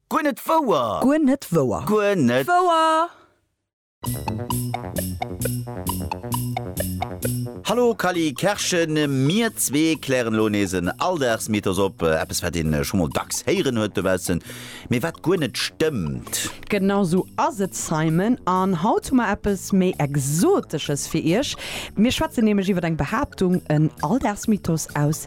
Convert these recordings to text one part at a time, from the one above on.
Guer net wouer! Guer net wouer! Guer net wouer! Hallo Kally Kerschen, mir zwee klären elo nees en Alldagsmythos op, eppes wat een scho mol dacks héieren huet dobaussen, mee wat guer net stëmmt. Genau esou ass et Simon, an haut hu mer eppes méi Exotesches fir Iech. Mir schwätzen nämlech iwwer eng Behaaptung, en Alldagsmythos aus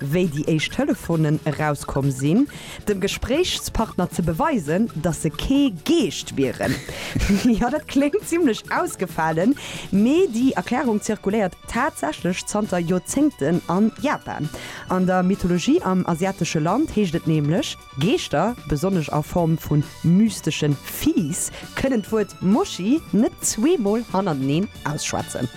wéi déi éischt Telefonen erauskomm sinn, dem Gespréichspartner ze beweisen, dass se kee Geescht wieren. Jo, dat kléngt zimlech ausgefalen, mee déi Erklärung zirkuléiert tatsächlech zanter Joerzéngten a Japan. An der Mythologie am asiatesche Land heescht et nämlech. Geeschter, besonnesch a Form vu mysteschen Viehs, kënnen d'Wuert Moschi net zweemol hannerteneen ausschwätzen.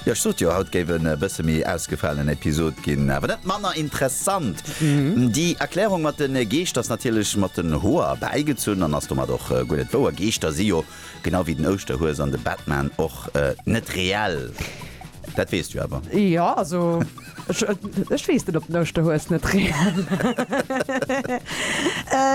Jo, ech sot jo, haut géif en e bësse méi ausgefalen Episod ginn, awer net manner interessant. Déi Erklärung mat de Geescht ass natierlech mat den Hoer bäigezunn an ass domat och guer net wouer. Geeschter si jo Genau wéi den Ouschterhues an de Batman och net reell. Dat weess du awer. Jo, also ech weess net, ob den Ouschterhues net reell ass.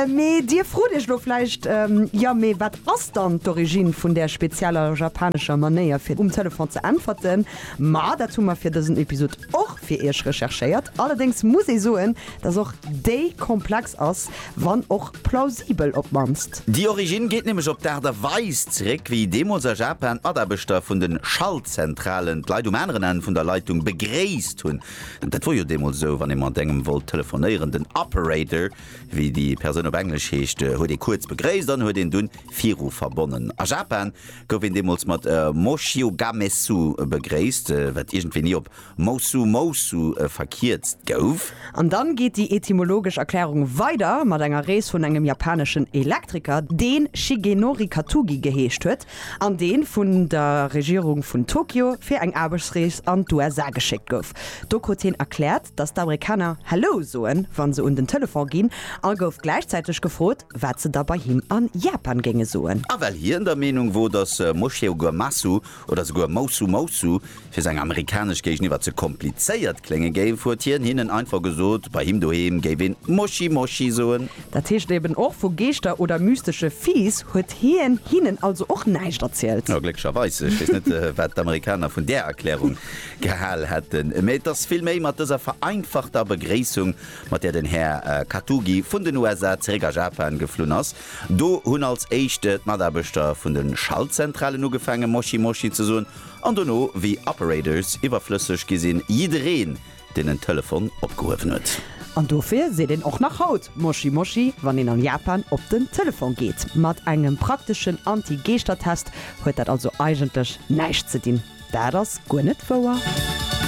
Mee dir frot iech elo vläicht, Jo, mee wat ass dann d'Origine vun där spezieller japanescher Manéier, fir um Telefon ze äntwerten? Ma dat hu mer fir dësen Episod och fir iech recherchéiert. Allerdéngs muss ee soen, dass och déi komplex ass, wann och Plausibel op d'mannst. Déi Originn geet nämlech op d'Aart a Weis zeréck, wéi deemools a Japan d'Mataarbechter vun de Schaltzentralen d'Leit um aneren Enn vun der Leitung begréisst hunn. Dat wor jo deemools esou, wann ee mat engem wollt telefonéieren, den Operator, wéi déi Persoun op Englesch heescht, huet ee kuerz begréisst an huet een dunn viru verbonnen. A Japan gouf een deemools mat Moshiogamesu begréisst, wat iergendwéi ni op Moussou Moussou verkierzt gouf. An dann geet déi etymologesch Erklärung weider mat enger Rees vun engem japaneschen Elektriker, deen Shigenori Katugi geheescht huet an deen vun der Regierung vun Tokio fir eng Aarbechtsrees an d'USA geschéckt gouf. Do krut hien erkläert, dass d'Amerikaner Hello soen, wann se un den Telefon ginn a gouf gläichzäiteg gefrot, wat se da bei him an Japan géinge soen. A well hien der Meenung wor, dass Moshiogamatsu oder souguer Moussou Moussou, fir seng amerikanesch Géigeniwwer ze komplizéiert klénge géif, huet hien hinnen einfach gesot, bei him doheem géif een Moschi Moschi soen. Dat heescht eben och, vu Geeschter oder mystesche Viiss huet hien hinnen also och näischt erzielt. Jo, glécklecherweis. Ech weess net, wat d'Amerikaner vun där Erklärung gehal hätten. Mee et ass vill méi mat dëser vereinfachter Begréissung, mat där den Här Katugi vun den USA zeréck a Japan geflunn ass. Do hunn als éischt d'Mataarbechter vun de Schaltzentralen ugefaange Moschi Moschi ze soen an dono, wéi Operators iwwerflësseg gi sinn, jiddereen, deen en Telefon opgehuewen huet. An dofir seet een och nach haut Moschi Moschi, wann een an Japan op den Telefon geet. Mat engem prakteschen Anti-Geeschtertest huet dat also eigentlech näischt ze dinn. Dat ass guer net wouer.